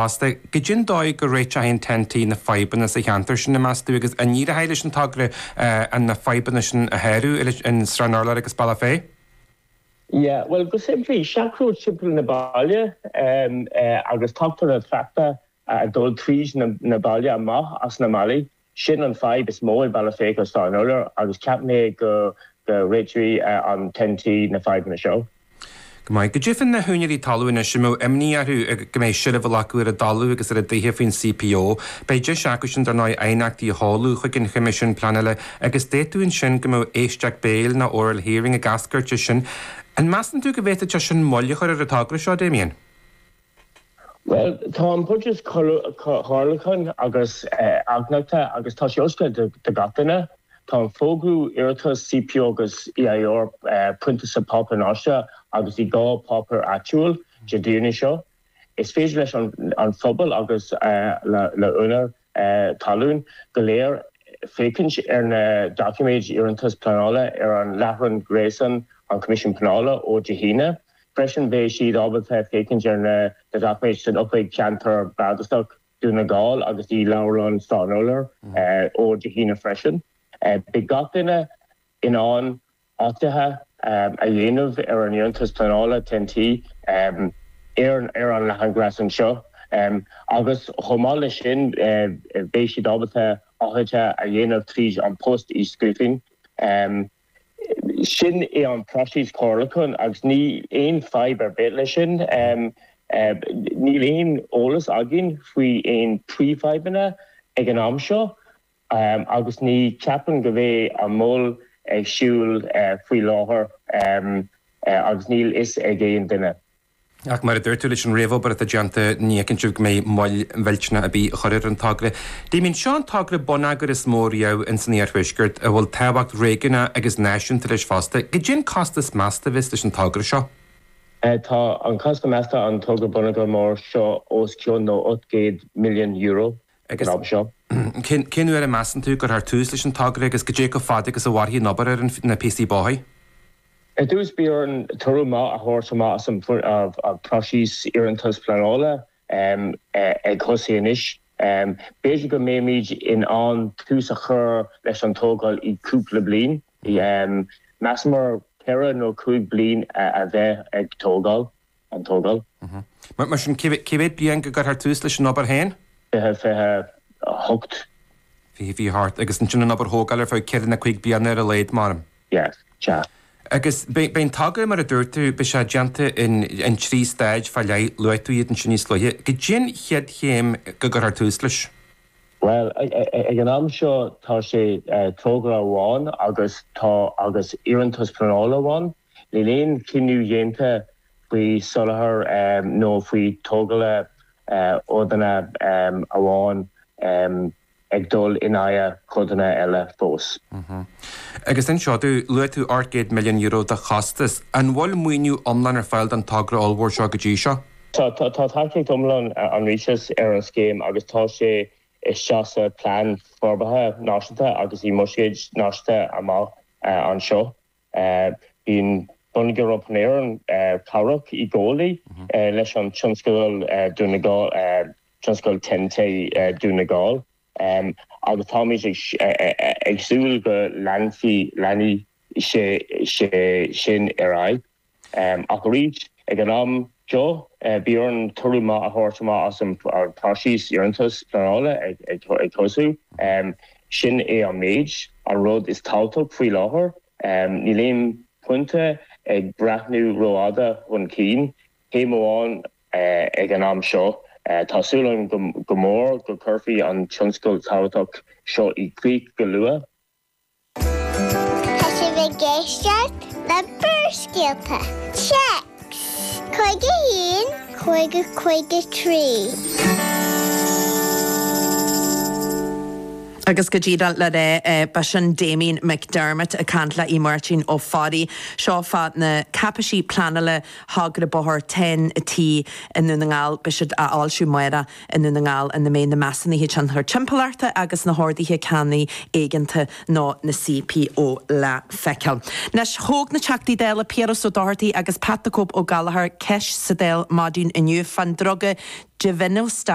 Fosta, goidé an dóigh a réiteoidh an Ten-T na fadhbanna sa cheantar sin, an measann tú, agus an éireoidh leis an togra na fadhbanna sin a shárú, i Srath an Urláir agus Bealach Féich? Yeah, bhuel, go simplí, seachród timpeall na baile agus tógtar an trácht atá ag dul tríd na baile amach as na mbailte. Sin an fadhb is mó ag Bealach Féich Srath an Urláir agus ceapaim go réiteoidh an Ten-T na fadhbanna seo. Go maith. Goidé faoi na húinéirí talamh anois a mbeadh imní orthu go mbeidh seilbh á glacadh ar a dtalamh agus ar a dtithe faoin CPO. Beidh deis acu sin dar ndóigh aighneachtaí a sheoladh chuig an Choimisiún Pleanála agus d'fhéadfadh ansin go mbeadh éisteacht béil nó oral hearing ag eascairt as sin. An measann tú go bhféadfadh sé sin moill a chur ar an togra seo, Damien? Bhuel, tá an próiseas comhairliúcháin agus aighneachtaí agus tá sé oscailte do gach duine. Tá an fógrú, iarratais CPO agus EIR priontáilte sa páipéar náisiúnta agus i dhá páipéar áitiúil Dé Domhnaigh seo. Is féidir leis an phobal agus le úinéir talún go léir. féachaint ar na doiciméid iarratais pleanála ar an láithreán gréasáin An Coimisiún Pleanála ó Dé hAoine. Freisin beidh siad ábalta féachaint ar na doiciméid san Oifig Ceantair Bardasach Dún na nGall agus i Leabharlann Srath an Urláir ó Dé hAoine freisin. Beidh gach duine in ann. aighneachtaí a dhéanamh ar an iarratas pleanála TEN-T ar an láithreán gréasáin seo agus chomh maith leis sin beidh siad ábalta aighneachtaí a dhéanamh tríd an bpost i scríbhinn. Sin é an próiseas comhairliúcháin agus níl aon fadhb ar bith leis sin. Níl aon eolas againn faoi aon príomhfhadhbanna ag an am seo Agus ní cheapaim go mbeidh aon mhoill ar siúl faoi láthair agus níl fhios ag aon duine. Ach mar a dúirt tú leis an réamhobair atá déanta ní fheiceann sibh go mbeidh moill mhillteanach ar bith á cur ar an togra. Damian, seo an togra bonneagair is mó riamh ins an Iarthuaisceart a bhfuil tábhacht réigiúnach agus náisiúnta leis fosta. Goidé an costas measta a bheas leis an togra seo? Tá an costas measta an togra bonneagair mór seo ós cionn nó ocht gcéad milliún euro. ag an am seo. Cén uair a measann tú a chuirfear tús leis an togra agus goidé chomh fada agus a mhairfidh an obair ar na píosaí bóthair? Ar dtús beidh orainn toradh maith a thabhairt amach as an próiseas iarratais pleanála ag tosú anois. B'fhéidir go mbeimid in ann tús a chur leis an tógáil i gcúpla bliain. Measaimid ceithre nó cúig bliain a bheith ag tógáil. an tógáil. Mar sin, cén bhliain go gcuirthear tús leis an obair féin? Fiche, fiche a hocht. Fiche, fiche a hocht. Agus ansin an obair thógála ar feadh ceithre nó cúig bliana ar a laghad, meá'ram? Yes, sea. Agus beidh an togra, mar a dúirt tú, beidh sé déanta in trí stáid fá leith, luaigh tú iad ansin níos luaithe. Goidé an chéad chéim go gcuirthear tús leis? Bhuel, ag an am seo tá sé togra amháin agus tá, agus iarratas pleanála amháin. Níl aon chinneadh déanta faoi soláthar nó faoi tógála codanna amháin ag dul in aghaidh codanna eile fós. Agus ansin, luaigh tú eur 800 milliún de chostas. An bhfuil maoiniú iomlán ar fáil don togra ollmhór seo go dtí seo? Tá. Tá tacaíocht iomlán an Rialtais ar an scéim agus tá sé istigh sa Phlean Forbartha Náisiúnta agus i mbuiséid náisiúnta amach anseo. Bíonn Bonneagar Iompair Éireann cabhrach i gcónaí leis an tionscadal Dún na Gall, tionscadal Ten-T Dún na Gall, agus táimid ag súil go leanfaidh, leanfaidh sé sin ar aghaidh. Ach arís, ag an am seo, beidh orainn toradh maith a thabhairt amach as an phróiseas iarratais pleanála ar dtús. Sin é an méid. An rud is tábhachtach faoi láthair, níl aon pointe ag breathnú ró-fhada chun cinn, céim amháin ag an am seo. Tá súil agam go mór go gcuirfí an tionscadal tábhachtach seo i gcrích go luath. Tá sibh ag éisteacht le Barrscéalta, Téacs, 51, 50, 53. Agus go díreach le rá b'shin Damien McDermott ag caint le Aodh Máirtín Ó Fearraigh. Seo fá na cáipéisí pleanála thogra bóthair Ten-T i nDún na nGall. Beidh siad á bhfoilsiú amárach. i nDún na nGall ina mbeidh na measúnuithe tionchair timpeallachta agus na horduithe ceannaigh éigeanta nó na CPO le feiceáil. Anois, thóg na Teachtaí Dála Piaras Ó Dochartaigh agus Pat the Cope Ó Gallchóir ceist sa Dáil maidin inniu fán druga Givinostat.